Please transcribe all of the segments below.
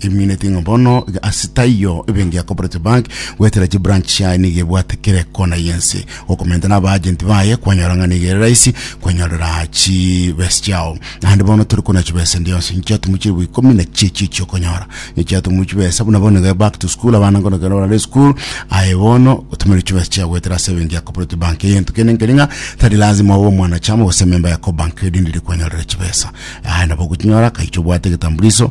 Emineti ng'a bono iga ase taiyo ebe engiya Cooperative Bank goetera chibranch chiaye nigo ebwate kera ekona y'ense. Gokomenta na abaagenti baye kwanyora ng'a nigo ere rahisi kwenyorera chibesa chiao. Naende bono tori korenda chibesa ende yonsi, inche chiatumu chilifu ikomi na chiechio chi'okonyora. Nigo chiatumu chibesa buna bono iga back to school abana ngono ekero barare esukuru, aye bono gotumeri chibesa chiaye goetera ase ebe engiya Cooperative Bank. Egento kende nkeri ng'a tari lazima obe omwanachama gose ememba ya Cobank erinde ere kwenyorera chibesa. Aye nabo ogochinyora akaiche obwate egetambuliso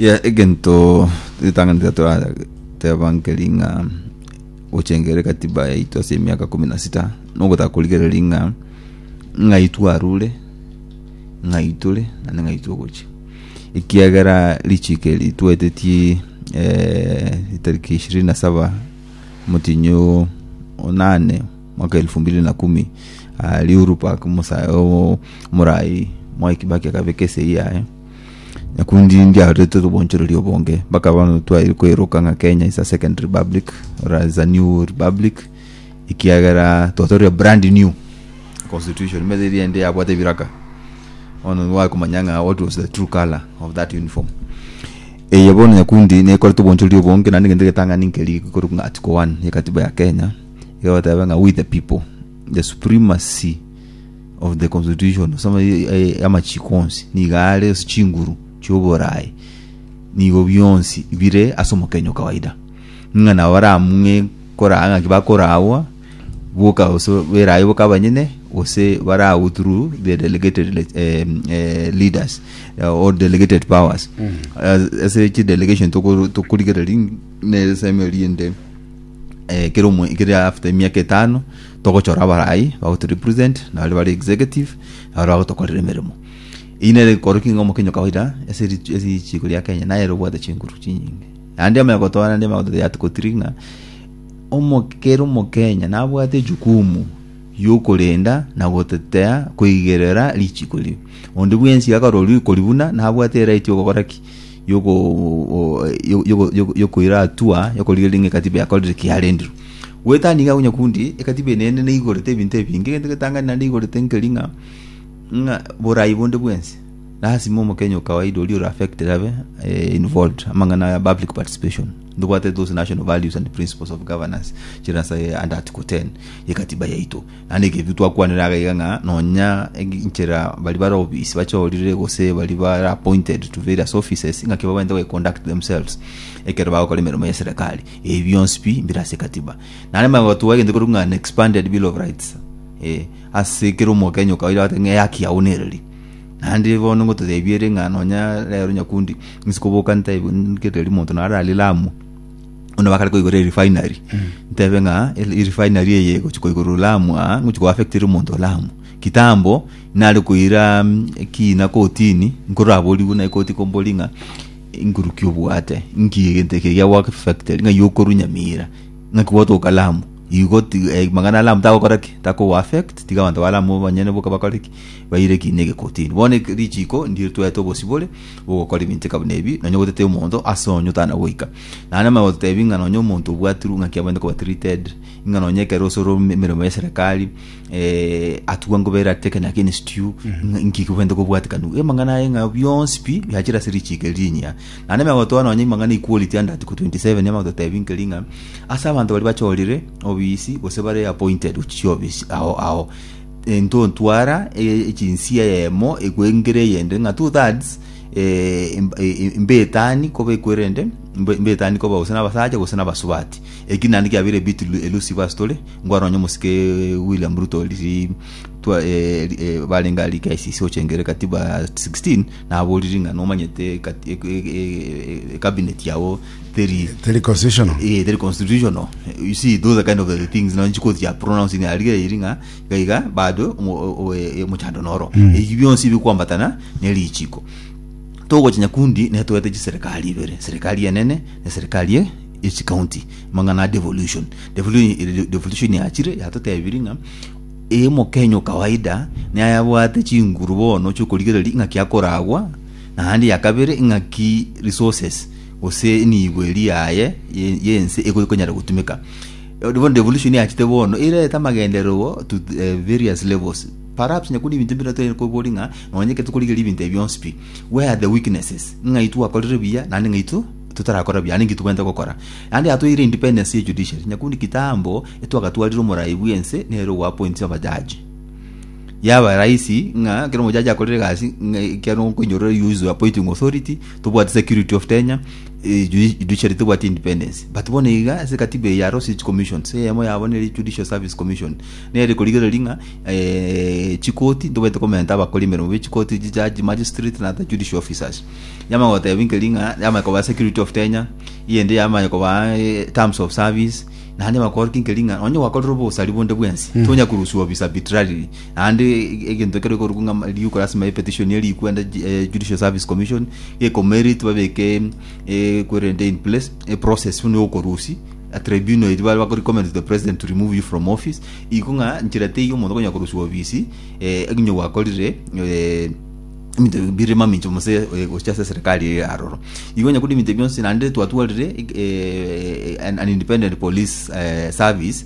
Yeah, egento ritang'ani tiga torateba nkeri ng'a gochengere katiba yaito ase emiaka kumi na sita nogotaka korigereria ng'a ng'ai twarure ng'ai tore naende ng'ai togochia ekiagera richiko eri twetetie eh, tariki ishirini na saba motinyo onane mwaka elfu mbili na kumi ah, riuru park musae omorai mwai kibaki akabeka esei yaye Nyakundi ndiarorete obonchoreri obonge mpaka bono twaire koeroka ng'a Kenya is a second republic or is a new republic ekiagera twatoria brand new constitution mezi eria ende yabwate ebiraka bono wakomanya ng'a what was the true color of that uniform eye bono nyakundi nekorete obonchoreri obonge naende egento egetang'ani nkeri korwa ng'a article 1 ya katiba ya Kenya egoteba ng'a we the people the supremacy of the constitution ase ama- e- e- amachiko onsi nigo are ase chinguru chioborayi nigo bionsi bire ase omokenyo kawaida ng'a nabo baramung'e koraa ng'aki bakorawa boka gose berayi boka abanyene gose barawu through the delegated le- em, eh, leaders eh, or delegated powers As- ase chidelegation tokoro- tokorigereria ng'a ne erisemo eriende eh, kero mwe- kere after emiaka etano Togochora abarai bago to represent na baria bare executive na baria bagotokorera emeremo. Eyio nere enkoro king'o mokenyo kawaida ase ri ase richiiko ria Kenya nayere obwate chinguru chinyinge. Naende amo yagotoa naende amo yagotoa yat kotiri ng'a omo kera omokenya nabwate echukumu yokorenda na gotetea koigerera richiiko riria. Onde bwensi akarorwa riiko riu buna nabwate eright yogokora ki? y'okoiratua, y'okorigereria ng'a ekatiba yakorire ki yarendirwe. Goetania iga onyakundi, ekatiba eye neende neigorete ebinto ebinge, egento egetang'ani naende eigorete nkeri ng'a ng'a borai bonde bwense, lasima omokenya o kawaida oria ore affected abe involved, amang'ana aya public participation, ndobwate those national values and principles of governance chire ase under article ten y'ekatiba yaito. Naende eke titwakwanire iga iga ng'a nonya enchera baria bare obisi bachorire gose baria bare appointed to various offices ng'aki babaente goconduct themselves ekero bagokora emeremo ya serikali ebi bionsi pi mbire ase ekatiba nare magotwa egento korwa ng'a an expanded bill of rights eh, ase kera omokenya okaire agoteba ng'a eyaki yao nereri naende bono ngototebie ere ng'a nonya rero nyakundi nse koboka ntae nkereri monto naro ari lamu buna bakare koigora erefinery ntebe ng'a ere- erefinery eye gochi koigora olamu aa ngochi koaffectire omonto olamu kitambo nare koira mm, ekina kotini nkoraborigwe na ekoti kombori ng'a inkurukia obwate nki egento eke gia work factory ng'ai okorwa nyamira ng'aki gwatoka lamu igo ti- eh, magana alamu tagokora ki takogo affect tiga abanto ba lamu banyene boka bakore ki baire ekiina ege kotini bono eke- richiko ndire twaete obosibore bogokora ebinceka buna ebi, nonye gotete omonto ase onye otana goika. Naende maya gototebi ng'a nonye omonto obwatirwe ng'a ki abwenerete koba treated, ng'a nonye ekero ase ore ome- emeremo ya eserekari, eh, atugwa ngobe ere ateke naki against you, ng'a nki kobwenerete kobwatikana. Amang'ana aye ng'a bionsi pi, biachire ase richiiko eri rinyia. Naende maya gotoa nonye amang'ana equality ande article 27 nigo agototebi nkeri ng'a, ase abanto baria bachorire obisi, gose bare appointed gochia chiofisi ao ao, into ntwara e- echinsia eyemo ekwengere eyende ng'a two thirds eh, em- eh, mbetani koba ekwerende mbe- mbetani koba gose nabasacha gose nabasubati eki naende kiabeire a bit elu- elusive ase tore ngware nonye omosike William Ruto riria twa- eh, ri- eh, barenge aria KICC gochengera ekatiba 16 naboriri ng'a nomanyete ekati- e- e- e- e- cabinet yao teri Teri constitutional. eh, teri constitutional you see those are kind of the things no chiko chia pronouncing ariga iri ng'a iga iga bado omo- o- o- e- omochando noro ebi bionsi bikwambatana ne richiko togocha nyakundi netoete chiserikali ibere serikali enene ne serikali e- echikaunti mang'ana a devolution devolution iri- devolution yachire yatotebiri ng'a ee omokenya o kawaida naye abwate chinguru bono chiokorigereria ng'aki akoragwa naende ya kabere ng'aki resources gose enibo eria yaye ye- y'ense eko ekonyara gotumeka Eh, bono revolution yachete bono erete amagenderero bo to th- eh, various levels perhaps nyakuri ebinto bire tonya kobori ng'a nonye ekero tokorigereria ebinto ebi bionsi pi where are the weaknesses ng'ai twakorire buya naende ng'ai tu totarakora buya naende nki tobwenerete gokora naende yatoeire independence ye judiciary nyakundi kitambo etwagatwarire omorai bw'ense nere ogoapointia abajaji yaba rahisi ng'a ekero omojaji akorire egasi ng'a ekiagera nkoinyorore use your appointing authority tobwati security of Kenya eh, judi- judiciary tobwati independence but bono iga ase katiba eye yarose echi commissions eyemo yabo nere judicial service commission nere korigereria ng'a eh, chikoti ntobete komenta abakori emeremo bechikoti jijaji magistrate na ata judicial officers yamanya gotebia nkeri ng'a yamanya koba security of Kenya eyende yamanya koba eh, terms of service naende bakore ki nkeri ng'a onye gwakorire obosari bonde bwensi tonya kuruswa obisa arbitrarily Naende egento ekero ekorokwa ng'a ma- rioka lasima epetition eria erikwe ande ji- eh, Judicial Service Commission, gekomoerit babeke equivalent in place, eprocess buna yokorusia, a tribunal eria bare bako recommend to the president to remove you from office, iko ng'a nchera teiyo omonto okonyara korusiwa obisi eh, onye gwakorire eh, ebinto bi- bire mamincha gose eh, gocha ase eserekari eye aroro. Igo onye korwa ebinto ebio bionsi naende twatwarire eg- eh, an an independent police eh, service.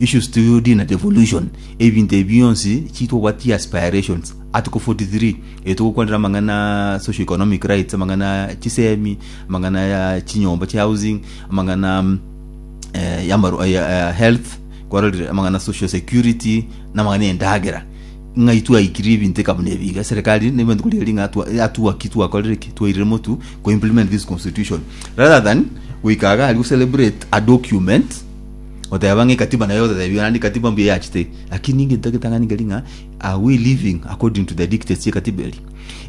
Issues to UD na devolution, Ebinto ebi bionsi chiitwa obwati aspirations. Article 43, Erio togokwanera amang'ana a socio-economic rights, amang'ana a chisemi, amang'ana ya chinyomba chia housing, amang'ana mm, eh, yamaru, eh, eh, health, kwarorire amang'ana social security, na amang'ana endagera. Ng'ai twaikire ebinto eka buna ebi iga, serikali nigo ebati korigereria ng'a twa- yatugwa ki twakorire ki, twairire motu ko-implement this constitution rather than goika iga aria gocelebrate a document Oteba ng'a ekatiba naye otatebia naende ekatiba mbuya eyachete lakini egento agetang'ani keri ng'a are we living according to the dictates y'ekatiba eri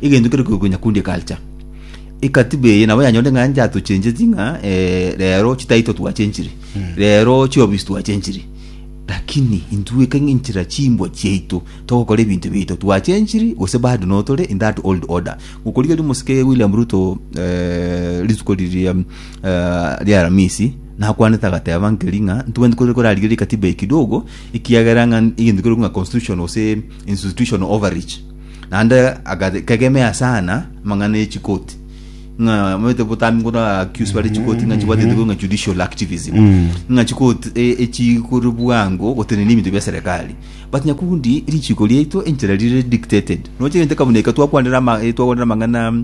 egento kere koigwa nyakundi culture ekatiba eye nabo yanyore ng'a nche atochencheti ng'a eh, rero chitaito twachenchire rero chiofisi twachenchire lakini intwe ekeng'e enchera chimbwa chiaito togokora ebinto biaito twachenchiri gose bado notore in that old order gokorigeria omosike William Ruto eh, rituko riria ri'Alamisi, nakwanete agateba nkeri ng'a ntibwenereti kore korarigerie ekatiba eye kidogo, ekiagera ng'a egento kekorokwa ng'a constitution gose institution overreach. Naende agate- kegemea sana amang'ana ye chikoti ng'a omanyete botambe nkoto accuse bare chikoti ng'a chibwate egento kekorokwa ng'a judicial activism ng'a chikoti e- echikore bwango gotenena ebinto bia serekari but nyakundi richiko riaito enchera rire dictated. Roche egento kebuna eke twakwanera ama- eh twakwanera amang'ana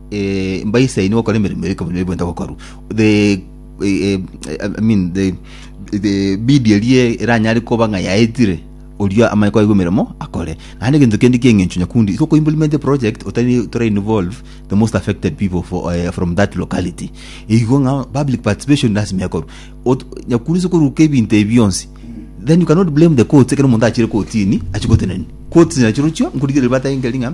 eh, mbaise inwe gokora emeremo y'ekabuni eria bwenta gokorwa the eh, eh, I mean the the bidi erie eranyare koba ng'a yaetire oria amanye kwaigwa emeremo akore naende egento kende kieng'encho nyakundi so implement a project otari tora involve the most affected people for, eh, from that locality igo ng'a public participation lasima ekorwa Ot- nyakundi sokoruka ebinto ebi bionsi then you cannot blame the courts ekero omonto achire kotini achigoteneni courts nachirochio nkorigere bataengeri ng'a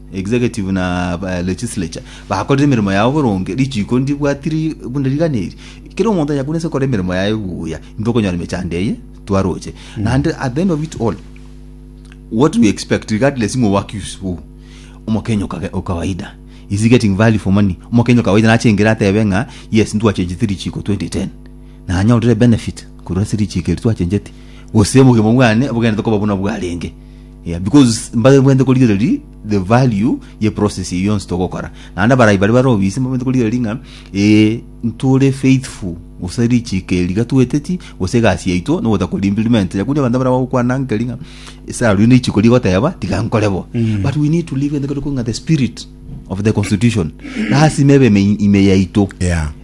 Executive na Legislature bakorire emeremo yao boronge, richiiko ndibwatiri buna rigana eri. Kera omonto onye akore nse okore emeremo yaye buya, intwe okonyora emechando eye twaroche. Naende at the end of it all, what we expect regardless ng'o oaccuse who, omokenya okage okawaida is getting value for money. Omokenya okawaida nachengere atebe ng'a yes ntwachenchete richiiko 2010 na anyorire benefit korwa ase richiiko eri twachencheti, gose obogima bwane bogenderete koba buna bwarenge. Yeah, because mbabwente korigereria the value ye process eyo yonsi togokora naende abarai bare bare obisi mbabwente korigereria ng'a ee ntore faithful gose richiko eri iga tweteti gose egasi yaito nogota kori implement yaku onye abanto baragokwana nkeri ng'a esara riu neichiko rigoteba tiga nkore bo but we need to live in the, ng'a the spirit of the constitution lasima ebe ime ime yaito Yeah.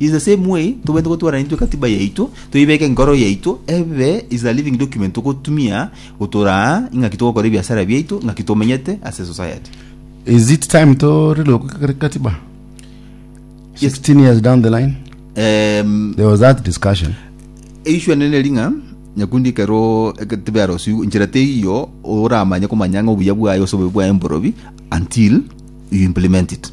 In the same way, tobwenerete gotwarana intwe ekatiba yaito, toibeke enkoro yaito ebe is a living document togotumia gotora aa, ing'aki togokora ebiasara biaito, ing'aki tomenyete ase society. Is it time to relook kati- katiba? 16 years down the line, Em, there was that discussion. eishu enene eri ng'a nyakundi ekero ekatiba yarosiu nchera teiyo oramanye komanya ng'a obuya bwaye ase obobe bwaye mborobi until you implement it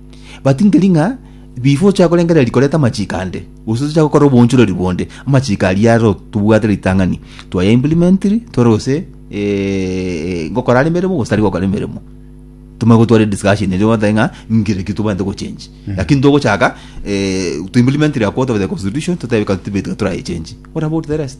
Batingeri ng'a bife ochake korengereria koreta amachiko ande, gose tochake gokora obonchoreri bonde. Amachiko aria aro tobwate ritang'ani, twaya implementiri tore gose eh, gokora are emeremo gose tari gokora emeremo tomanye gotwara discussion erio batae ng'a ngire ki tobwate gochenji lakini togochaka eh, to implementiri akwo tobete constitution totebe katiba etiga torayechenji what about the rest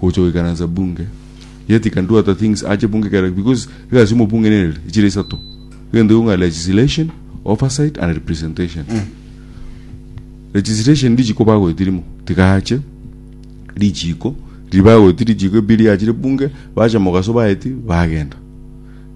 Gocha goikaransa bunge. Yet he can do other things ache bunge kere because egasi y'omobunge nere echire isato. Egento gionga legislation, oversight and representation. Legislation richiko bagoeti rimo tiga ache richiko ribagoeti richiko ebiria achire bunge bacha mogaso baeti bagenda.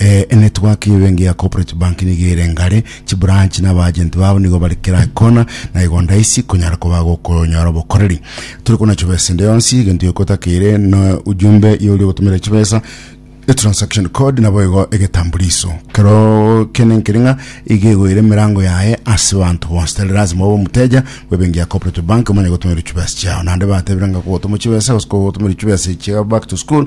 Ee, enetwork y'ebenki ya Cooperative Bank nigo ere ngare, chibranch na abaagent babo nigo bare kera ekona, na igo ndaisi konyara koba gokonyora obokoreri. Tore kona chibesa ende yonsi, egento gioka otakeire na ujumbe y'oria ogotomerera chibesa, etransaction code nabo igo egetambuliso. Kero kene nkeri ng'a iga egoire emerango yaye ase banto bonsi, tari lazima obe omoteja bw'ebenki ya Cooperative Bank omanye gotomererwa chibesa chiao. Naende batebire ng'a kogotomwa chibesa gose kogotomererwa chibesa echiga back to school,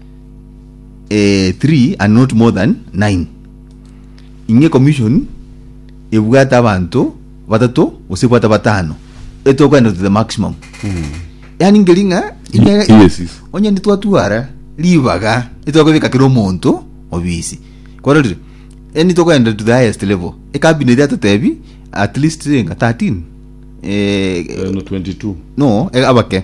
eh, three and not more than nine ing'e commission ebwate abanto batato gose ebwate batano etokogenda to the maximum yani ngeri ng'a ing'e- I- yes, yes. onye nitwatwara ribaga nitwakobeka kera omonto obisi kwarorire e nitokogenda to the highest level ekabinet yatotebi at least enga 13 eh, Eh, no 22 no eh, abake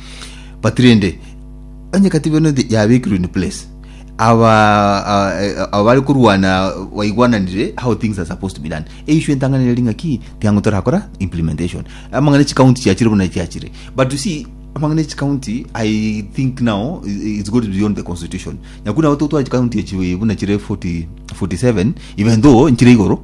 But rende onye katiba eno th- yabekirwe in place aba a- e- aba bari korwana baigwananire how things are supposed to be done eishu entang'ani eri ng'aki tiang'o torakora implementation amang'ana chikaunti chiachire buna chiachire but you see amang'ana chikaunti i think now i- it's got beyond the constitution nyaku nabo totware chikaunti echi buna chire 40 47 even though nchire igoro